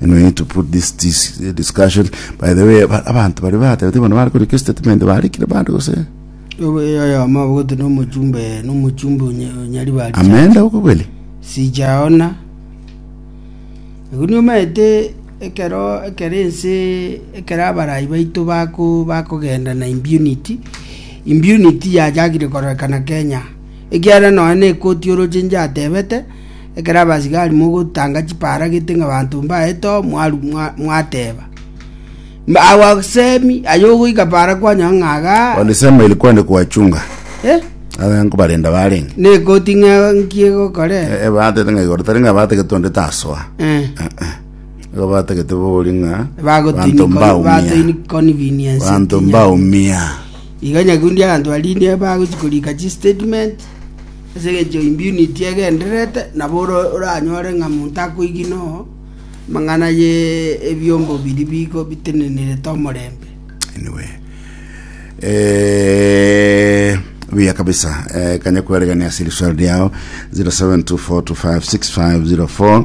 And we need to put this, this discussion. By the way, ba- abantu bari batebete bono bari koreka statement barikire bari gose oyo amabugote nomochumbe nomochumbe onyari bari amenda okobeli. sijaona igo niomanyete ekero ekero ense ekero abarai baito bako bakogenda na impunity impunity yachakire kororekana kenya ekiagera nonya na ekoti orochenche atebete Ekero abasigari mogotanga chipaara gete ng'a abanto mbaye to, mwaru- mwa- mwateba, Mbaagwa semi, aye ogoika paara kwanyora ng'a aga. Walisema ilikuwa ni kuwachunga Eh? abe nkubalinda balingi Nekoti ng'a nkie gokore. Eh, eh, baatete ng'a igoro tari ng'a baategete onde tasoa Eh. igo baategete bori ng'a Bagotini- banto mbaumia batini convenience banto nkinya. mbaumia Iga nyakundi abanto barinde bagochi korika chi statement. Ase engencho imbiuniti egendererete, nabo oranyore ng'a monto akoigi noo amang'ana y'ebiombo biria bigo bitenenerete omorembe. anyway eh, buya kabisa eh, kanya kweregania ase riswali riao 0724256504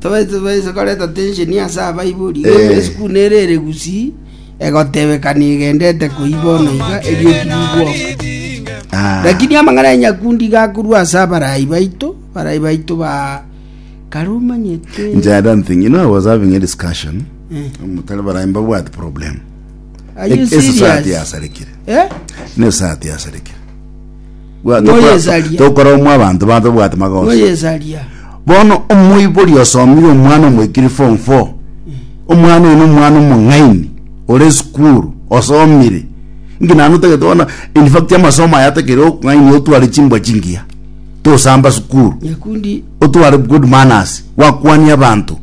Tobaisa tobaisa koreta tensheni ase abaibori, Ee. esukuru nere ere gusii, egotebekania egendete koyi bono iga erioki rigwoka. Ah. Lakini amang'ana ya nyakundi gakorwa ase abarai baito, barai baito ba kare omanyete. Nje, I don't think. You know, I was having a discussion. Mutare barayi mbabwati problem. Are you Ese saati serious? yasarekire. Eh? Nese saati yasarekire. Bwa- tokora- Noyesaria. tokora omwa abanto ba tobwate magoso noyesaria bono omoibori osomire omwana omoikiri form 4 omwana oyo nomwana omong'aini ore esukuru osomire nki naende otagete bono infact amasomo aya atakere okong'ainia otware chimbwa chingiya tosamba sukuru nyakundi otware good manners wakwania abanto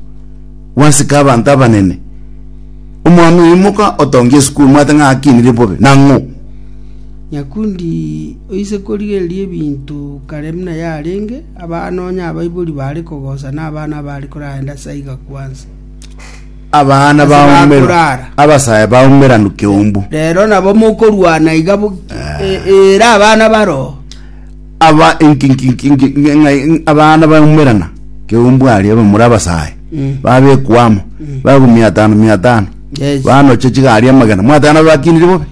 wasika abanto abanene omwana oyo imoka otongie esukuru mwate ng'a akinire bobe nang'o Nyakundi oise korigereria ebinto kare buna yarenge, abaa nonya abaibori baare kogosa na abana abaare koraenda ase aiga kwansa. Abana Ase baumera, bakorara. abasae baumera nkeumbu. Rero nabo mokorwana iga bo- e- era abana baro. Aba inki- inki- inki- inki- inki- ng'a- abana baumerana keumbu aria bamura abasae Mm. babekwa amo bagwa mia tano mia tano Yes. banoche chigari amagena mwateba nabakinire bobe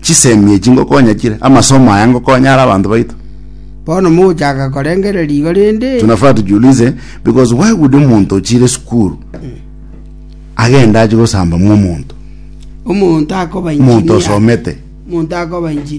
Chisemi echi ngokonya chire, amasomo aya ngokonya are abanto baito. Bono mogochaka korengereria igo rende? Tunafaa tujiulize because why would omonto ochire esukuru agende ache gosamba mwa omonto Omonto akoba omonto engineer. osomete Omonto akoba engineer.